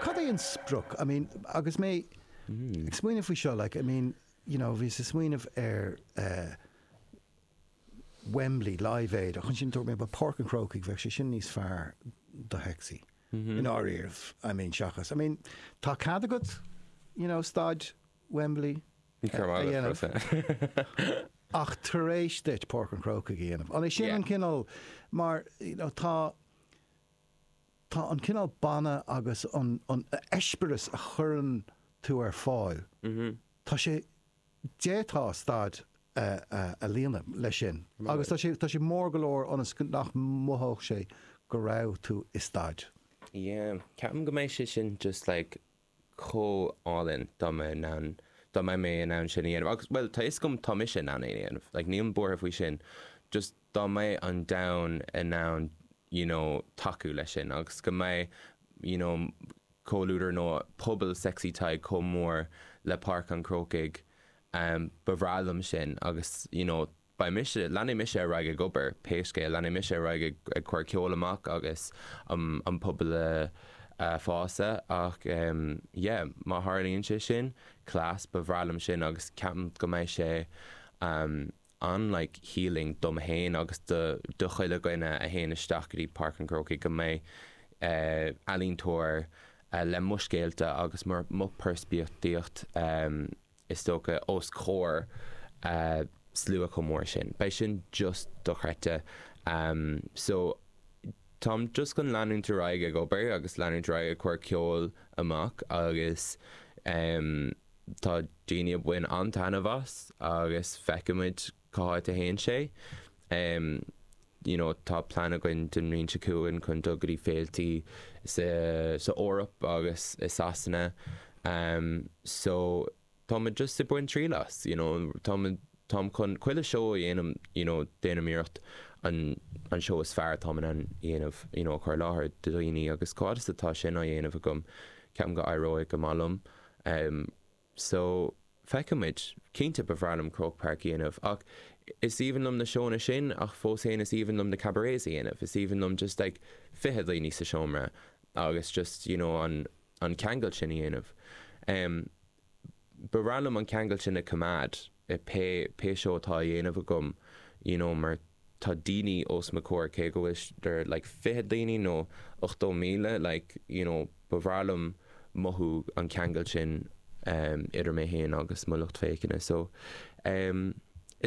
Cad é an sprioc? I mean, agus mé ag smaoineamh faoi seo, like, I mean, you know, bhíos ag smaoineamh ar eh Wembley, Live Aid, ach ansin dúirt mé Páirc an Chrócaigh, bheadh sé sin níos fearr do Shexy. I ndáiríribh, I mean, seachas, I mean, tá cead agat, you know, staid Wembley a dhéanamh. Ach tar éis duit Páirc an Chrócaigh a dhéanamh. An é sin an cineál mar you know, tá tá an cineál banna agus an eispéireas a chuireann tú ar fáil, tá sé, d'fhéadfá staid a líonadh leis sin agus tá sé mór go leor ionas nach mothódh sé go raibh tú i staid. Yeah, ceapaim go mbeidh sé sin just like chomh álainn dá mbeadh in ann, dá mbeadh mé in ann sin a dhéanamh agus bhuel tá fhios agam tá mise in ann é a dhéanamh like nílim buartha faoi sin just dá mbeadh an domhan in ann you know tacú leis sin agus go mbeadh you know comhluadar nó pobal Sexy Tadhg chomh mór le Páirc an Chrócaigh ba bhreá liom sin agus you know Beidh mise, leanfaidh mise ar aghaidh ag obair pé scéal, leanfaidh mise ar aghaidh ag, ag cur ceol amach agus an, an pobal a, a shásamh ach ehm yeah má tharlaíonn sé sin, class, ba bhreá liom sin agus ceapaim go mbeidh sé ehm an like healing dom fhéin agus do, do chuile dhuine a théann isteach go dtí Páirc an Chrócaigh go mbeidh eh ealaíontóir eh le mo scéalta agus mo, mo peirspictíocht ehm. is dócha, os comhair slua chomh mór sin. Beidh sin just dochreidte. So, táim just chun leanúint ar aghaidh ag obair agus leanúint ar aghaidh ag cur ceol amach agus tá daoine ag baint an-taitneamh as agus feicfimid cá háit a théann sé. You know tá plean againn don mbliain seo chugainn chun dul go dtí féiltí sa sa Eoraip agus i Sasana so tá muid just ag baint triail as you know tá muid táim chun chuile seó a dhéanamh you know déanaim iarracht an an seó is fearr táim in ann dhéanamh you know a chur i láthair do dhaoine agus comh fad is atá sin á dhéanamh agam ceapaim go n-éireoidh go maith liom. So, feicfimid. Cinnte ba bhreá liom Croke Park a dhéanamh ach is aoibhinn liom na seóanna sin ach fós fhéin is aoibhinn liom na cabarets a dhéanamh. Is aoibhinn liom just like fiche daoine sa seomra agus just you know an an ceangal sin a dhéanamh. Em ba bhreá liom an ceangal sin a choimeád. eh pé, pé seó atá á dhéanamh agam you know mar tá daoine os mo comhair cé go bhfuil siad like fiche daoine nó ochtó míle like you know ba bhreá liom mothú an ceangal sin em idir mé féin agus mo lucht féachana so em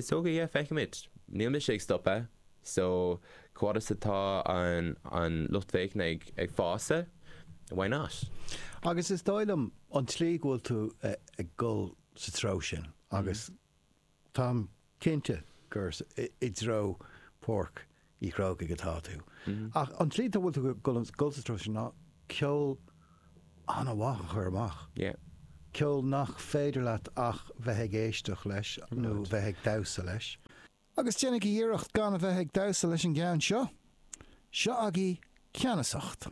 is dócha yeah feicfimid níl mise ag stopadh so comh fad is atá an an lucht féachana ag ag fás a why not? Agus is dóigh liom an tslí go bhfuil tú ag dul sa treo sin agus táim cinnte gur i dtreo Páirc Uí Chrócaigh atá tú. Ach an tslí go bhfuil tú ag dul sa treo sin ná ceol an-mhaith a chur amach. Ceol nach féidir leat ach bheith ag éisteacht leis nó bheith ag damhsa leis. Agus déanaigí iarracht gan a bheith ag damhsa leis an gceann seo. Seo agaibh 'Ceannasacht'.